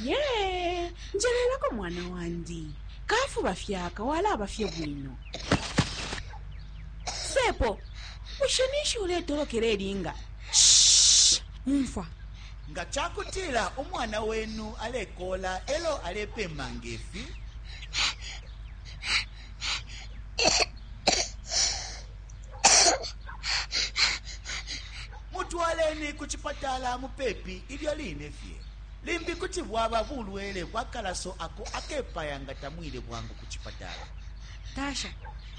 ye njelelako mwana wandi kafuba fyaka walaba fye bwino sepo bushe ninshi uletolokela elinga Shh! umfwa nga ca kutila umwana wenu alekola elo alepema ngefi Mutwaleni ku cipatala mupepi ilyo line fye. Limbi kuti bwaba bulwele bwa kalaso ako akepaya nga tamwile bwangu ku cipatala. Tasha,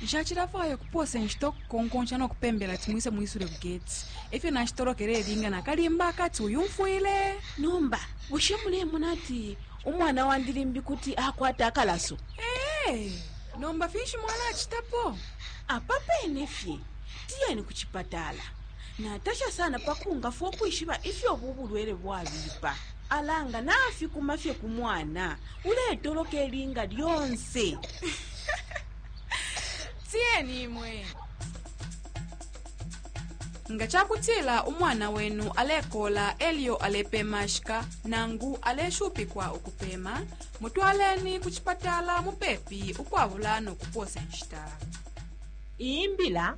Nshacilafwaya ukupoosa inshita ukukonkonsha no kupembela ati mwise mwisule ku geti. E fyo nashitolokela ilinga na kalimba akati uyumfwile! Nomba bushe mulemona ati umwana wandi limbi kuti akwata akalaso? Ee, nomba finshi mwalacitapo? Apa pene fye tiyeni ku cipatala. Natasha sana pa kungafwa ukwishiba ifyo ubu bulwele bwabipa. Ala nga nafikuma fye ku mwana, uletoloka ilinga lyonse. Tiyeni imwe. Nga ca kutila umwana wenu alekola e lyo alepemashika nangu aleshupikwa ukupema, mutwaleni ku cipatala mupepi ukwabula no kupoosa inshita. Iyi mbila